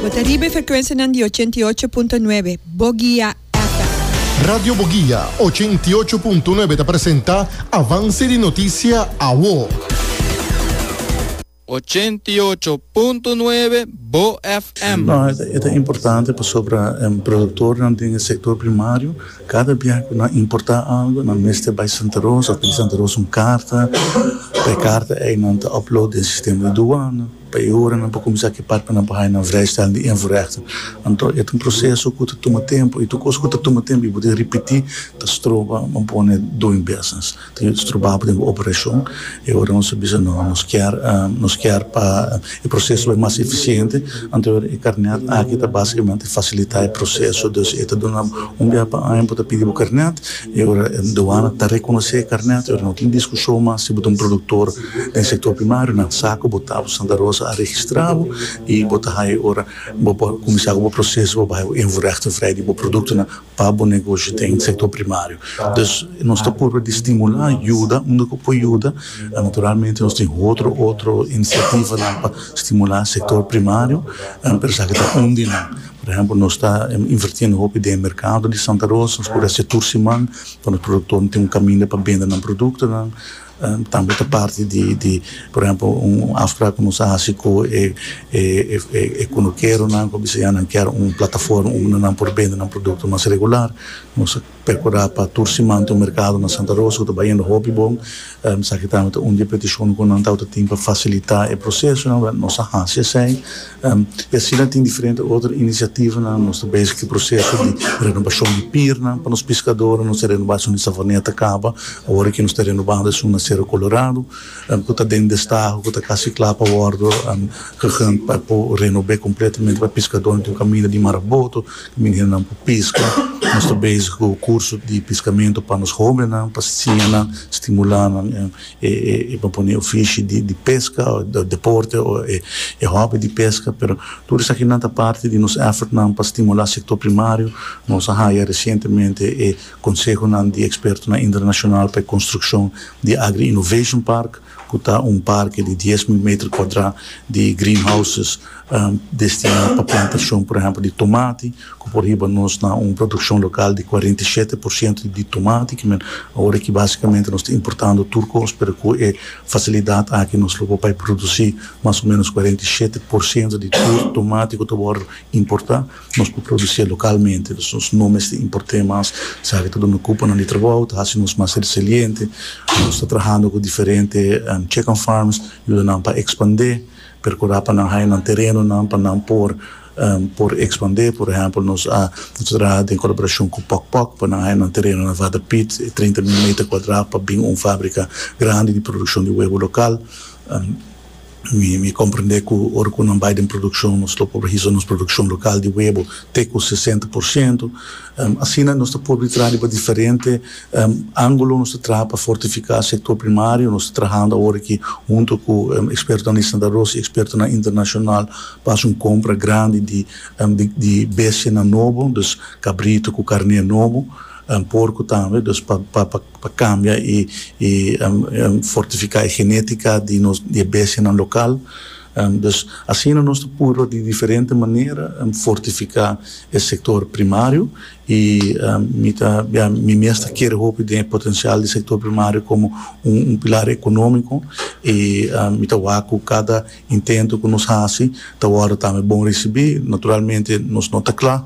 Bo ta riba e frekwensianan di ochenta i ocho punto nuebe, Bogia FM. Radio Bogia ochenta i ocho punto nuebe ta presenta Avance di Noticia Awo. Ochenta i ocho punto nuebe, Bo FM. No, e ta importante pasobra e produktornan den e sektor primario, kada bia ku nan importá algu, nan mester bai Santa Rosa òf pidi Santa Rosa un karta. Pa e karta ei nan ta upload den sistema di duana. Pa e ora nan por kuminsá ki partenan pa haña nan vrijstelling di invoerrechten, anto e ta un proseso ku ta tuma tempu i tur kos ku ta tuma tempu i bo tin ripití ta stroba bo pone doing business, ta yuda stroba bo den bo operashon. E ora nos a bisa no, nos kier nos kier pa e proseso bai mas efisiente, anto e ora e karnèt aki ta basikamente fasilitá e proseso, dus e ta duna bo un biaha pa aña bo ta pidi bo karnèt. E ora duana ta rekonosé e karnèt, e ora no tin diskushon mas si bo ta un produktor den sektor primario, nan sa ku bo ta bo Santa Rosa a registrá bo i bo ta haña e ora bo por kuminsá ku bo proseso pa bo haña bo invoerrechten vrij di bo produktonan pa bo negosio den sektor primario. Dus nos ta purba di stimulá, yuda unda ku por yuda. Naturalmente nos tin otro otro inisiativanan pa stimulá sektor primario, pero esaki ta un di nan. Por ehempel, nos ta invertiendo hopi den e mercado di Santa Rosa, nos por haci tur siman pa nos productornan tin un caminda pa bende nan productonan, tambe ta parti di, por ehempel, un afspraak cu nos a haci cu e e cunukeronan cu a bisa ya nan kier un plataforma unda nan por bende nan producto mas regular, nos a. Percura pa tur siman ta un mercado na Santa Rosa cu ta bay hende hopi bon. Esaki tambe ta un di e peticionnan cu nan tawata tin pa facilita e procesonan, wèl, nos a haci esey. Y asina tin diferente otro iniciativanan. Nos ta bezig cu e proceso di renobacion di piernan pa nos piscadornan. Nos a renoba esun di Savaneta caba, awor aki nos ta renobando esun na Cerro Colorado cu ta den destaho, cu ta casi cla pa wordo, pa por renobe completamente pa e piscadornan tin un caminda di Maraboto. Minirnan pa piska, Nos ta bezig ku kurso di piskamentu pa nos hóbennan pa siña nan, stimulá nan e propone ofishi di peska o e deporte o e hòbi di peska. Pero tur esaki nan ta parti di nos èfortnan pa stimulá sektor primario. Nos a haya resientemente e konsehonan di ekspertonan internashonal pa e konstrukshon di Agri-Innovation Park. cu ta un parke di dies mil meter cuadra di greenhouses destina pa plantacion, por ehempel, di tomati, cu por hiba nos na un produccion local di cuarenta i shete por ciento di tomati, ki men awor aki basicamente nos ta importando tur cos, pero cu e facilidad aki nos lo por bai produci mas o menos cuarenta i shete por ciento di tur tomati cu ta wor importa. Nos por producié localmente, dus nos no mester importé mas. Sa ki ta duna cuponan di trabou, ta haci nos mas resiliente. Nos ta trahando cu diferente chicken farms, yuda nan pa expandé, percurá pa nan haya nan terenonan pa nan por por expandé. Por ehempel, nos a nos ta traha den colaboracion cu Pok Pok pa nan haya nan terenonan Water Piet, trinta mil meter cuadra, pa bin un fabrica grandi di produccion di webo local. Mi comprende cu ora cu nan bay den produccion nos lo por hizo nos produccion local di webo te cu sesenta por ciento. Asina nos ta por di traha riba diferente angulo. Nos ta traha pa fortifica sector primario. Nos ta trahando awor aki hunto cu expertonan di Santa Rosa y expertonan internacional pa haci un compra grandi di di bestianan nobo. Dus cabrito cu carne nobo. Porco tambe. Dus pa pa. pa cambia y fortifica e genetica di nos di e bestianan local, dus asina nos ta purba di diferente manera fortifica e sector primario y mi ta bia mi mes ta kere hopi den e potencial di sector primario como un pilar economico y mi ta wak cu cada intento cu nos haci ta wordo tambe bon ricibi, naturalmente nos no ta cla.